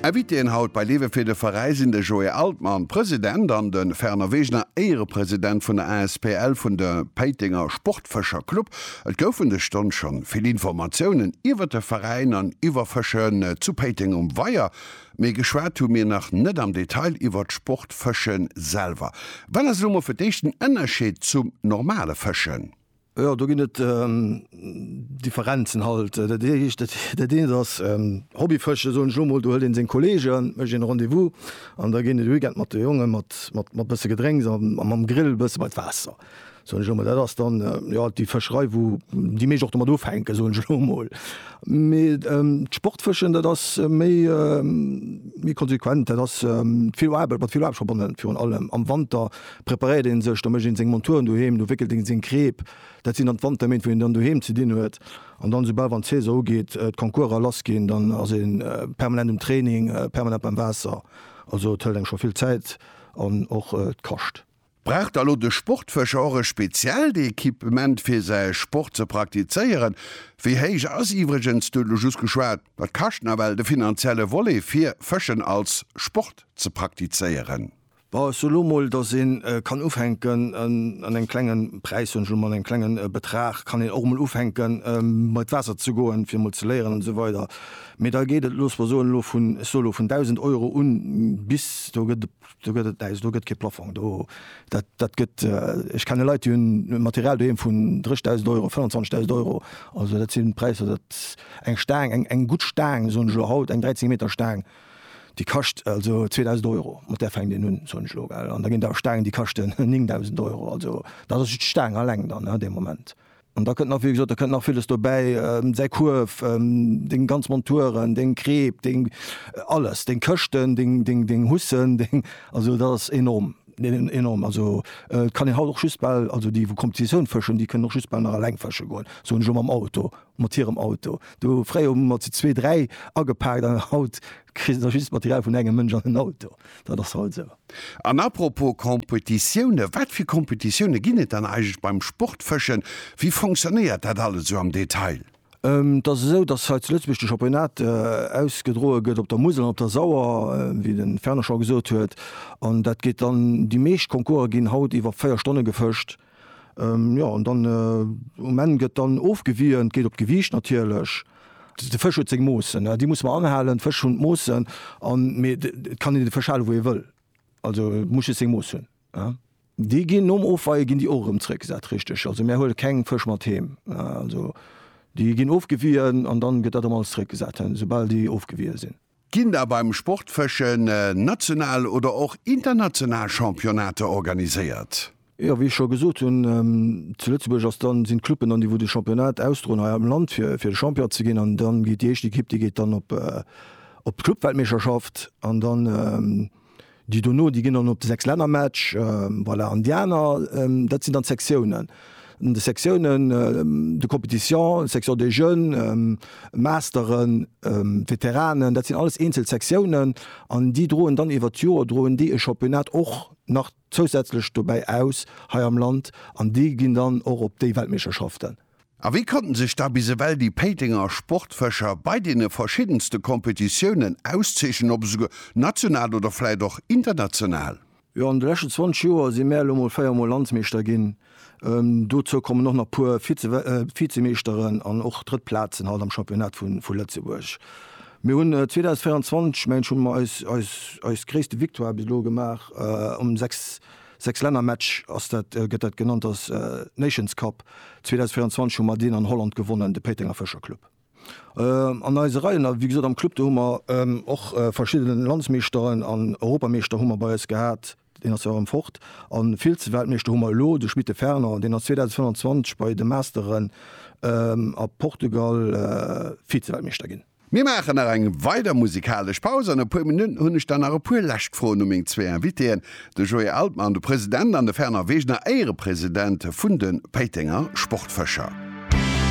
Invitéen haut bei Lewe fir de Veräi sinn de Joé Altmann, President, an de Fernand Wegener, Éierepresident vun der asbl vun de Péitenger Sportfëscher Club. Et goufen dës Stonn schonn vill Informatiounen iwwert de Veräin an iwwer Fëschen zu Péiteng um Weier, mee geschwat hu mir nach net am Detail iwwert d'Sportfëschen selwer. Wat ass elo mol fir d'éischt den Ënnerscheed zum normale Fëschen? Jo, do ginn et Differenzen halt. Dat Eescht, dat eent ass Hobbyfëschen, soen ech elo mol. Do huelt een seng Kolleegen, mécht een e Rendez-vous an da geet een de Weekend mat de Jongen, mat, mat, mat bësse Gedrénks a mam Grill e bësse bei d'Waasser, soen ech elo mol. Dat ass dann, jo, déi Fëscherei, wou déi meescht och domat ufänken, soen ech elo mol. Mee d'Sportfëschen, dat ass méi, méi konsequent. Dat ass vill Aarbecht, mat vill Aarbecht verbonnen, virun allem am Wanter. preparéiert een sech, da mécht een seng Monturen doheem, do wéckelt een seng Kreep, dat sinn dann d'Wanterméint wou een dann doheem ze dinn huet an dann soubal wann d'Saison ugeet, d'Concourser lass ginn, dann ass ee permanent um Training, permanent beim Waasser, also et hëlt engem scho vill Zäit an och et kascht. Brauch da lo de Sportfëscher och e speziellt Equipement fir säi Sport ze praktizéieren? Wéi héich ass iwwregens, du huet lo just geschwat, dat kascht nawell, de finanzielle Volet fir Fëschen als Sport ze praktizéieren? Bon, ech soe lo mol, datt een kann ufänken an engem klenge Präis, soen ech elo mol, an engem klenge Betrag kann een och emol ufänken bei d'Waasser ze goen, fir emol ze léieren an esou weider. Mee da geet et, loosse mer soen, elo vun, ech soe elo vun 1.000 Euro un bis, do gëtt et, do gëtt et näischt, do gëtt kee Plafong do. Dat, dat gëtt, ech kenne Leit, déi hunn Material doheem vun 30.000 Euro, 25.000 Euro. Also dat sinn Präisser, dat, eng Staang, eng, eng gutt Staang, soen ech elo haut, eng 13 Meter Staang, Déi kascht also 2.000 Euro, mat där fänkt een un, soen ech elo, gell. An da ginn der Staangen, déi kaschten 9.000 Euro. Also dat ass just d'Staang alleng dann an deem Moment. An da kënnt nach, wéi gesot, da kënnt nach villes dobäi, säi Kuerf, deng ganz Monturen, deng Kreep, deng alles, deng Këschten, deng Hussen, deng, also dat ass enorm, enorm. Also et kann een haut och just bal, also déi wou Competitioun fëschen, déi kënnen och just bal nach eleng fësche goen, soen ech elo, mam Auto mat hirem Auto do. Fréier hu mer zu zwee, dräi agepaakt an haut kritt der just d'Material vun engem Mënsch an en Auto. Dat ass haut esou. An à propos Competitioune, wat fir Competitioune ginn et dann eigentlech beim Sportfëschen? Wéi fonctionnéiert dat alles esou am Detail? Et ass esou, datt hei zu Lëtzebuerg de Championnat ausgedroe gëtt op der Musel an op der Sauer, wéi de Fernand scho gesot huet. An dat geet dann, déi meescht Concourse ginn haut iwwer véier Stonne gefëscht. Jo an dann um Enn gëtt dann ofgewiien, geet op d'Gewiicht natierlech. De Fësch huet seng Moossen, déi muss mer anhalen. D'Fësch hunn d'Moossen an mee et kann een de Fësch hale wou ee wëll. Also et muss just seng Mooss hunn. Déi ginn nom Ofweie ginn déi och erëm zréckgesat, richteg. Also mär huele keng Fësch mat heem. Also déi ginn ofgewiien an dann gëtt dat erëm alles zréckgesat, soubal déi ofgewiie sinn. Ginn da beim Sportfëschen national oder och international Championnater organiséiert? Jo, wéi ech scho gesot hunn, zu Lëtzebuerg ass dann, sinn d'Cluben dann déi wou de Championnat ausdroen hei am Land fir fir de Champion ze ginn an dann geet déi éischt Ekipp déi geet dann op op d'Clubweltmeeschterschaft an dann, Déi dono, déi ginn dann op de Sechslännermatch. Voilà, an déi aner, dat sinn dann d'Sektiounen. An de Sektiounen, de Compétitions, Section des Jeunes, Masteren, Veteranen, dat sinn alles eenzel Sektiounen an déi droen dann iwwert d'Joer, droen déi e Championnat och nach zousätzlech dobäi aus hei am Land an déi ginn dann och op déi Weltmeeschterschaften. A wéi konnten sech da bis ewell déi Péitenger Sportfëscher bei deene verschiddenste Kompetitiounen auszeechnen, ob esouguer national oder vläit och international? Jo, an de leschten 20 Joer si mär elo mol 4 mol Landsmeeschter ginn. Dozou kommen och nach puer Vizemeeschteren an och drëtt Plazen halt am Championnat vu Lëtzebuerg. Mir hunn 2024, mengen ech, hunn mer eis gréisste Victoire bis elo gemaach um 6 Sechs Länner Match ass dat, gëtt dat genannt, ass Nations Cup 2024 hu mer deen an Holland gewonnen, de Péitenger Fëscher Club an eise Reien. A wéi gesot am Club do hu mer och verschidden Landsmeeschteren an Europameeschter hu mer bei eis gehat, deen ass jo erëm fort, a Vize-Weltmeeschter hu mer elo de Schmitt de Fernand, deen ass 2025 bei de Masteren a Portugal Vize-Weltmeeschter ginn. Mir maachen nach eng weider musikalesch Paus. An e puer Minutten hunn ech dann nach e puer lescht Froen u meng zwee Invitéen, de Joé Altmann, de President, an de Fernand Wegener, Éierepresident vun de Péitenger Sportfëscher.